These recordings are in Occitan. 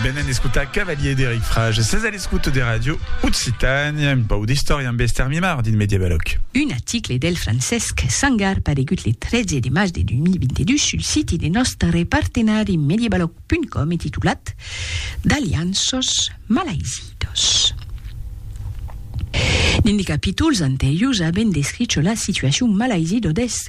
Venen escotar Cavalier d'Eric Frage, ses a l'escoute de Radio Occitània, un pau d'istòria amb Esther Mimard dins Mediavalòc. Un article del Francesc Sangar paregut le 13 de març de 2022 sul siti de nòstre partenari Mediavalòc.com e titulat D'alianços malaizidos. Dins de capítols anteriors avèm descricho la situacion malaizido deth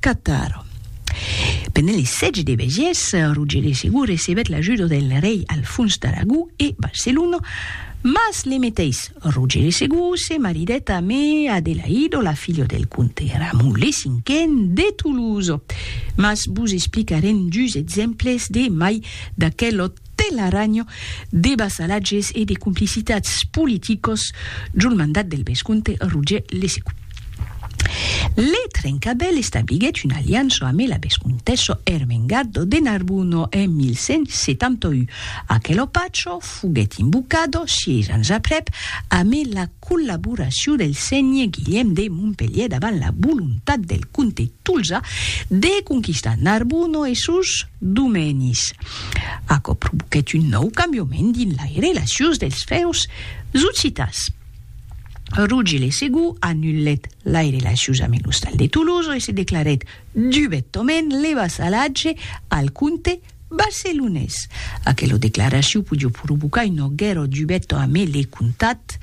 Catar. Pendent li sètge de Bègies, Roger de Segur recebèt l'ajuda del rei Alfons d'Aragó e Barcelona, mas le meteis Roger de Segur se maridèt amé Adelaido, la filha del comte Ramon le Cinquen de Toulouse. Mas vos explicarem dus exemples de mai d'aquel òt. Telaranho de vassalatges e de complicitats politicos jol mandat del vescomte Roger Lesecu. Le Trencabèl establiguèt una aliança amé la vescomtessa Ermengardo de Narbuno en 1171. Aquelo pacho foguèt invocado, sièis ans aprèp, amé la collaboracion del sénher Guilhèm de Montpelhièr davant la volontat del comte Tolzà de conquistar Narbuno e sos Domenis. Aquò provoquèt un nòu cambiament dins lai relacions dels fèus zocitas. Rogi le Segur anulèt lai relacions amb l'ostal de Tolosa e se declarèt dubetament le vassalatge al comte barcelonés. Aquela declaracion podió provocar una guèrra dubeta amé le comtat,